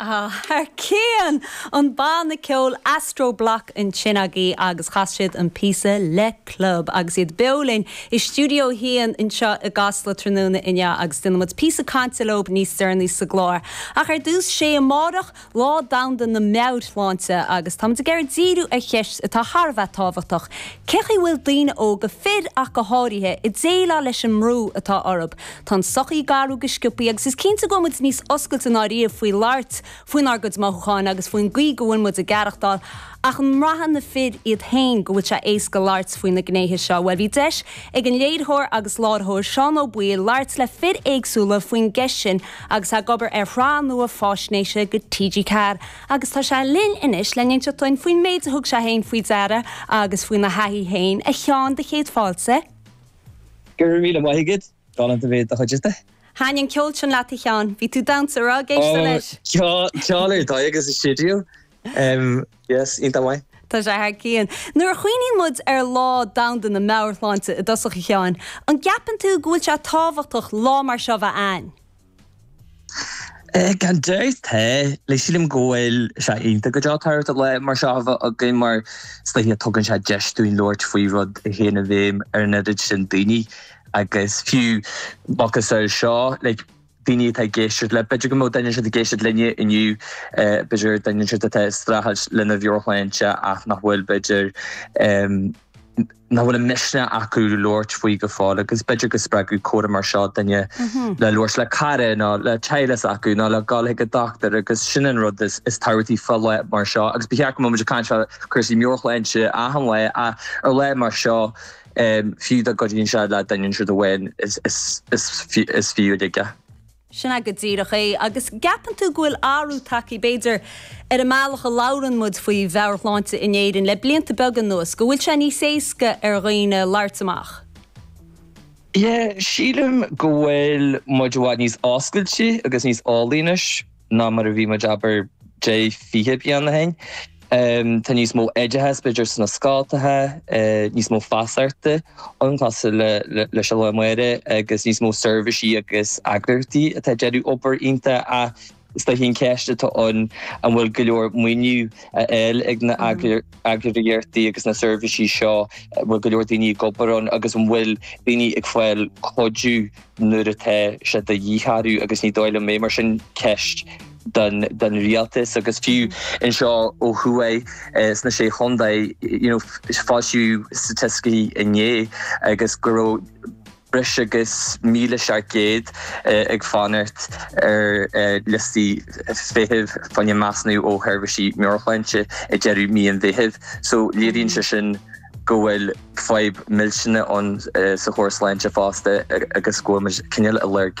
Thar cionn! An banna ceoil Astro Bloc ansin agaibh agus chas siad an píosa Le Club agus iad beo linn i Stiúideo 1 anseo i gCasla tráthnóna inniu agus déanfaidh muid píosa cainte leob níos deireanaí sa gclár. Ach ar dtús, 'sé amárach Lá Domhanda na Meabhairshláinte agus tá muid ag iarraidh díriú ar cheist atá thar a bheith tábhachtach, cé chaoi a bhfuil daoine óga, fir ach go háirithe, ag déileáil leis an mbrú atá orthu? Tá an tsochaí ag athrú go sciopthaí agus is cinnte go bhfuil muid níos oscailte ná riamh faoi labhairt faoinár gcuid mothúcháin agus faoin gcaoi go bhfuil muid ag aireachtáil ach an mbraitheann na fir iad féin go bhfuil sé éasca labhairt faoi na gnéithe seo? Bhuel, bhí deis ag an léiritheoir agus láithreoir Seán Ó Baoill labhairt le fir éagsúla faoin gceist sin agus ag obair ar shraith nua faisnéise do TG4 agus tá sé linn anois le n-inseacht dhuinn faoin méid a thug sé féin faoi deara agus faoina thaithí féin. A Sheáin, do chéad fáilte. Go raibh míle maith agat. Galánta bheith i do chuideachta. Thaitin an ceol sin leat a Sheáin. Bhí tú ag damhsa, raibh ag éisteacht leis? Ceol ar dóigh agus i stiúideo. Yes, iontach maith. Tá sé thar cionn. Nuair a chuimhníonn muid ar Lá Domhanda na Meabhairshláinte i dtosach, a Sheáin, an gceapann tú go bhfuil sé tábhachtach lá mar seo bheith ann? Gan dabht, tá. Sílim go bhfuil sé iontach go deo tábhachtach lá mar seo a bheith againn mar is dóiche tugann sé deis dúinn labhairt faoi rud a théann i bhfeidhm ar an oiread sin daoine agus fiú, macasamhail seo, daoine atá ag éisteacht le, b'fhéidir go mbeadh, duine ansiúd ag éisteacht linne inniu, b'fhéidir, duine ansiúd atá ag streachailt lena mheabhairshláinte ach nach bhfuil, b'fhéidir, nach bhfuil an misneach acu labhairt faoi go fóill agus b'fhéidir go spreagfadh comhrá mar seo duine le labhairt le cara nó le teaghlach s'acu nó le dul chuig an dochtúir agus sin an rud is tábhachtaí fá lá mar seo agus ba cheart go mbeadh muid ag caint fá chúrsaí meabhairshláinte achan lá ach ar lá mar seo Fiú dá gcuidíonn sé le duine ansiúd amháin, is fiú uilig é. Sin é go díreach é. Agus an gceapann tú go bhfuil athrú tagtha, b'fhéidir, ar an mbealach a labhrann muid faoi mheabhairshláinte in Éirinn le blianta beaga anuas, go bhfuil sé níos éasca ar dhaoine labhairt amach? Yeah, sílim go bhfuil muid i bhfad níos oscailte agus níos eolaí anois. ná mar a bhí muid abair deich, fiche bliain ó shin. Tá níos mó oideachais b'fhéidir sna scoltacha, níos mó feasachta ann cosúil le leis an lá amárach agus níos mó seirbhísí agus eagraíochtaí atá ag déanamh obair iontach ach is dóiche an cheist atá ann an bhfuil go leor maoiniú á fháil ag na eagraíochtaí agus na seirbhísí seo, an bhfuil go leor daoine ag obair ann agus an bhfuil daoine ag fáil cuidiú nuair atá sé de dhíth orthu agus ní dóigh liom é, mar sin ceist don rialtas agus fiú anseo ó thuaidh sna sé chontae, you know, foilsíodh staitisticí inné agus go raibh, breis agus 1,700 ag fanacht ar liostaí feithimh faoi choinne measúnú ó Sheirbhísí Meabhairshláinte ag deireadh mhí an Mheithimh so léiríonn sé sin go bhfuil fadhb mhillteanach ann sa chóras sláinte fosta agus go bhfuil muid cineál ag lorg